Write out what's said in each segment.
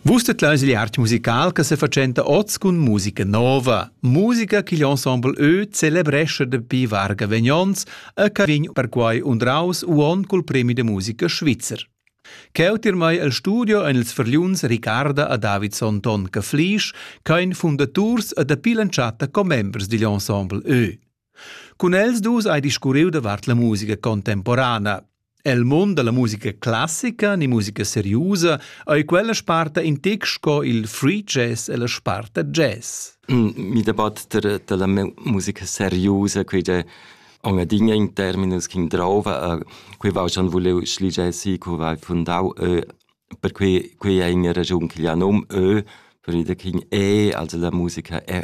Vus tedlais il art musical che sefatschenta oz cun musica nova, musica ch'igl ensemble Ö celebrescha dapi varga vegnons e che vegn perquai undraus uon cul premi de musica svizzer. Cheu tirmai el studio ein ils verliuns Ricarda a Davidson Ton Caflisch, kein Fundaturs e dapi l'entschatta commembers digl ensemble Ö. Cun els dus hai discurriu davart la musica contemporana. El mund dalla musica classica ni musica seriusa ei quella sparta in tec sco il free jazz e la sparta jazz. Mm, mi debatter dalla musica seriusa, quei de Ongadinha in terminus che drova, quei va schon voleu schligia si, co va fundau ö, per quei quei è in ragion che gli nom ö, per ida kin e, also la musica è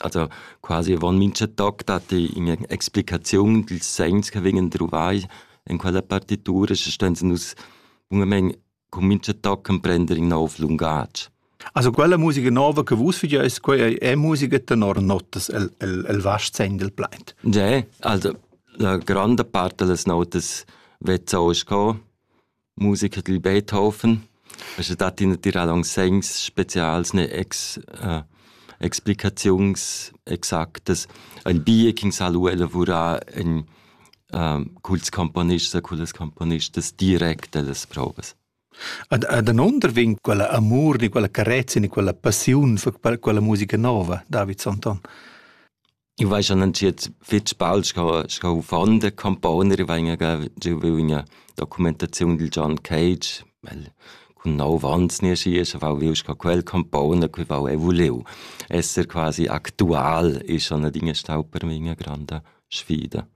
also quasi avon mincha toc dat ei in'explicaziun dils segns che vegnan druvai en quella partitura, sche ston nus bungamein cun mincha toc emprender in nov lungatg. Also quella musica nova che vus fageis, quei ei è musica tenor notas el, el, el vast segn del plaint. Ja, also la grande parte delle notas wird so ist gekommen. musica dil Beethoven. Sche dat ina tirada aunc segns specials ne ex, äh, explicaziuns exactas. Ein bia ch'in sa lu elavurar ein äh, culs componists e cullas componistas direct ellas provas. Ad, ad an onder vegn quella amur, ni quella carezia, ni quella passiun for quella, quella musica nova, David Santon. Eu vaiva schon entschiet fich bald sco sco uffant da componer. I vaina giovü üna documentaziun dil John Cage, el cun nov ans naschi e vau viu sco quel compona, que vau eu vuliu. Esser quasi actual es schon adina stau per me üna granda sfida.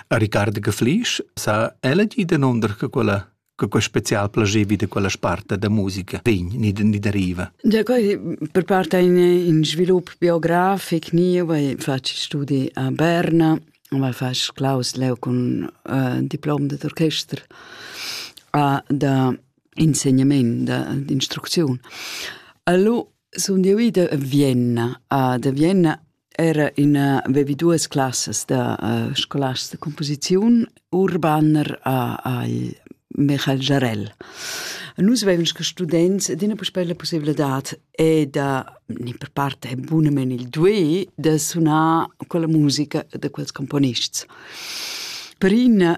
A Riccardo Geflisch s'ha ella gì danunder che quella che quei special plagevi da quella sparta da musica vegn ni, ni deriva? Da quei per part ein in svilup biografic ni, vai faci studi a Berna, weil fast Klaus Leo con uh, diplom d'orchester a da insegnament, d'instruzione. Allora sono io ida a Vienna, a da Vienna era in vevi duas classas da uh, scolars de composiziun urbaner a, al Michael Jarell. Nus veven che students d'ina puspei la possibilità e da ni per parte bunamen il due da sunar con la musica de quels componists. Per in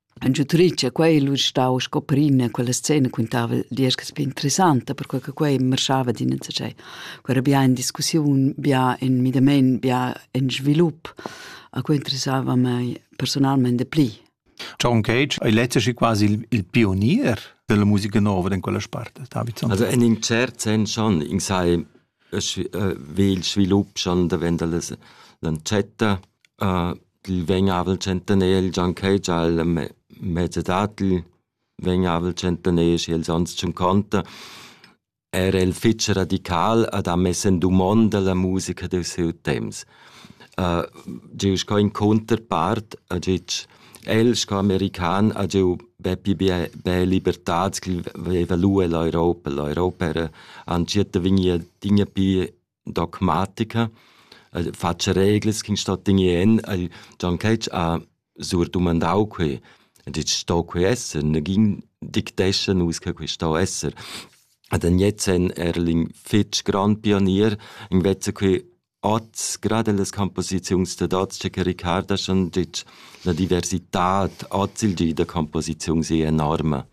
En turitgia quei ei lu stau sco prima quella scena quintava dieschas bien interessanta perquei che quei marschava d'in enzatgei. Quei era bia en discussiun, bia en midamein, bia en svilup. A quei interessava mei personalmein de pli. John Cage ei letztlich quasi il, il pionier della musica nova in quella sparte, David Sanders. Also in in cert sen schon, ich sei äh, will svilup schon da wenn da l'encetta äh, Dil vegn avel tschentaner gianchei gia el mez età dil vegn avel tschentaner schi els ans tschunconta. Era el fich radical ed ha mess in dumonda la musica dil siu temps. Giu sco in cunterpart ha gitg el sco american ha giu bepi bia bia libertad ch'el veva lu ell'Europa. L'Europa era entschiet da vegnir adina pi dogmatica, el fatscha reglas ch'ün sto tegner en. El Gian Ketsch ha sur dumandau quei, ha detg sto quei esser, negin dictescha nus che quei sto esser. Ed en jetzt en Erling fitg grand pionier, invece quei oz, gerade las composiziuns da oz, che Ricard ha schon detg, la diversità oz il di da composiziun è enorme.